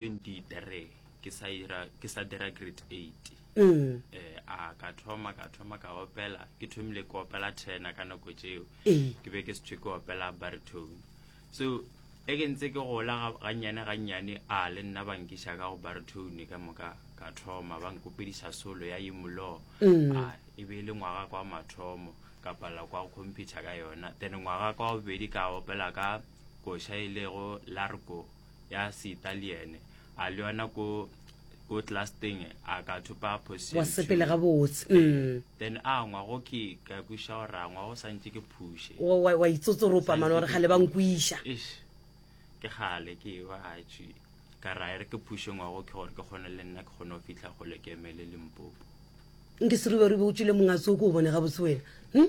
23 ke sa ira ke sa dira grade 8 mm. eh a ka thoma ka thoma ka opela ke thomile ke opela tena ka nako tšeo eh. ke be ke setswe ke opela baritone so e ke ntse ke gola gannyane gannyane a le nna bankiša ka go baritone ka moka ka thoma ba nkopediša solo ya imolo mm. a e be e le ngwaga kwa mathomo ka pala kwa computer ka yona then ngwaga kwa bobedi ka opela ka koša e lego largo ya seitaliene a le yona ko ko tlasteng a ka thopa wa sepele ga botse eh, mm. then a ngwa go ke ka kwiša gore a ngwa go santse ke phushe wa itsotsoropa mane gore gale ba nkwiša ke gale ke ba gatswi ka ra ere ke phushe ngwa go ke gore ke kgone le nna ke kgone go fitlha gole ke emele lempopo nke seruberube o tswile mongatso o ke o bone ga botse wena hm?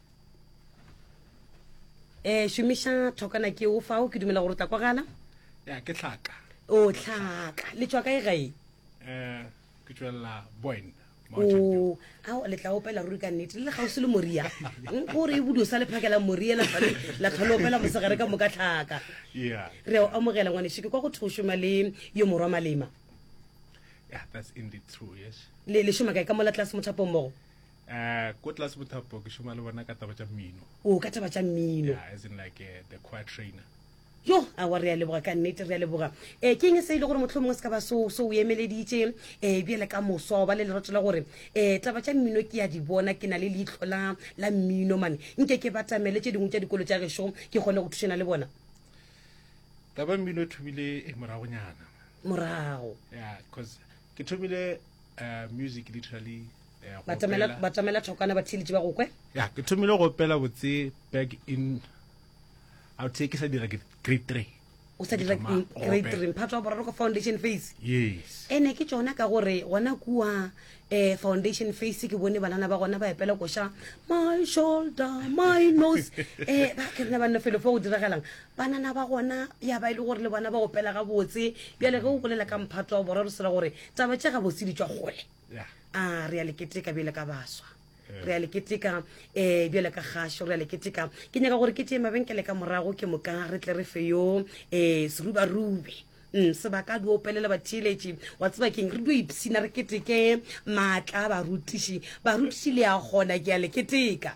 um šomiša thokana ke o fao ke dumela gore o tla kwagala ya ke tlhaka o tlhaka le tswa kae gae um ke tswelela boen o a le tla opela ruri ka nnete le le gausi le moria gore e bodio sa le phakela moria la tlhole la tlhole opela mosegare ka moka tlhaka yeah re a o amogela ngwaneso ke kwa go thwe o šoma le yo morwa malema yeah that's indeed true yes le le šoma kae ka mola tlase mothapo mmogo Uh, ko tlase mothapo ke šoma le bona ka taba tša mmino o ka taba tša mmino yeah, as in like uh, the choir trainer yo a wa re a leboga ka nnete re a leboga um ke eng se e le gore motlho mongwe se ka ba so o emeleditše um eh, bjele ka moswa ba le leroto la gore um taba tša mmino ke ya di bona ke na le leitlho la la mmino mane nke ke batamele tše dingwe tša dikolo tša gešo ke kgone go thušana le bona taba mmino e thomile e moragonyana morago ya yeah, cause ke thomile uh, music literally uh, batamela thokana ba theletše ba gokwe ya ke thomile go opela botse back in a the ke sa dira grade three o sa dira grade three mphato wa boraro ka foundation face yes ene ke tsona ka gore gona kua um foundation face ke bone banana ba gona ba epela koša my shoulder my nose um ba kerena banna felo fo go diragalang Banana ba gona ya ba e le gore le bona ba opela gabotse. Bjale ge o bolela ka mphato wa boraro sela gore taba tše gabotse di tšwa kgole. A re a le keteka bjale ka baswa. Re a le keteka um eh, bjale ka kgašo re a le keteka. Ke nyaka gore ke tšee mabenkele ka morago ke moka re tle re fe yo um eh, serubarube mm, sebaka a di opelele batheeletši wa tseba keng re dio ipshina re keteke maatla a barutiši barutiši le a kgona ke a le keteka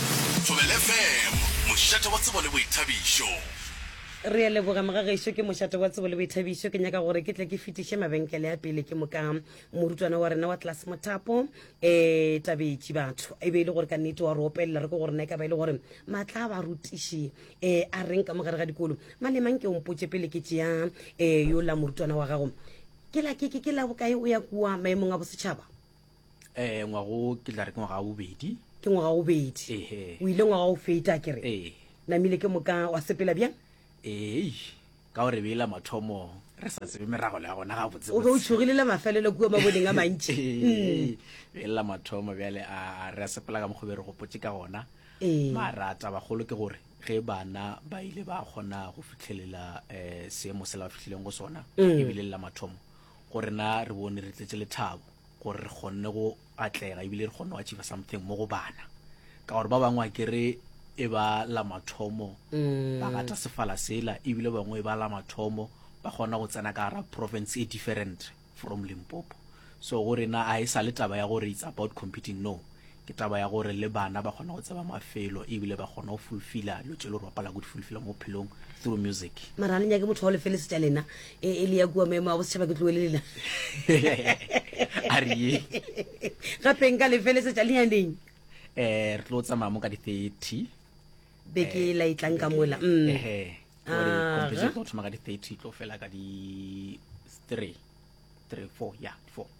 Thobela FM, mošate wa tsebo le boithabišo. Re a leboga mogagešo, ke mošate wa tsebo le boithabišo. Ke nyaka gore ke tle ke fetiše mabenkele a pele ke moka morutwana wa rena wa tlase mothapo um eh, tabetše batho e be e le gore ka nnete wa re opelela re ke gore na e ka ba e le gore maatla a barutiši um a reng ka mogare ga dikolo malemang ke ompotse pele ke tšea um eh, yo la morutwana wa gago ke la ke ke- ke la bokae o ya kua maemong a bosetšhaba um ngwaga o ke tla re ke ngwaga wa bobedi ke ngwaga wa bobedi Ehe. o ile ngwaga o feta ke re ee namile ke moka wa sepela bjang ee ka gore beela mathomo re sa tsebe merago le ya gona ga botse o be o tšhogile le mafelelo kua maboneng a mantši Mm. belela mathomo bjale a re a sepela ka mokgobe re gopotse ka gona Ee. mara tabagolo ke gore ge bana ba ile ba kgona go fitlhelela um seemo se la ba fihlileng go sona Mm. ebile le la mathomo Go rena re bone re tletše lethabo gore re kgonne go atlega ebile re kgonne go achiva something mo go bana, ka gore ba bangwe akere e ba la mathomo ba gata sefala sela ebile bangwe e ba la mathomo ba kgona go tsena ka gara province e different from Limpopo. So go rena a e sa le taba ya gore it's about competing, no, Ke taba ya gore le bana ba kgona go tseba mafelo ebile ba kgona go fulfila lo tše lo rapala go di fulfila mo phelong through music. Mara ha le nyake motho wa lefele setša lena e, e le ya kua maemo a bosetšhaba ke tloele lena a re ye gape nka lefele setša le yaneng eh re tlo tsamaya mo ka di 30 beke e la e tlang ka mola mm. ehe gore Aha. competition e tlo thoma ka di 30 e tlo fela ka di 3 3 4 ya 4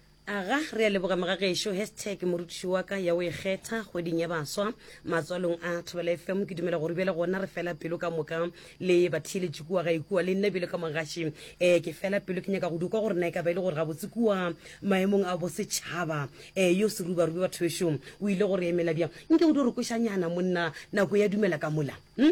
Aga re a leboga mga gešo hashtag morutiši wa ka ya o e kgetha kgweding ya baswa matswalong a Thobela FM ke dumela gore bjale gona re fela pelo ka moka le batheeletši kua ga ikua le nna bjale ka mogaši eh ke fela pelo ke nyaka go dukwa gore na e ka ba e le gore gabotse kua maemong a bosetšhaba eh yo serubarube batho bešo o ile gore emela bjang nke o di re kwešanyana monna nako ya dumela ka mola hm?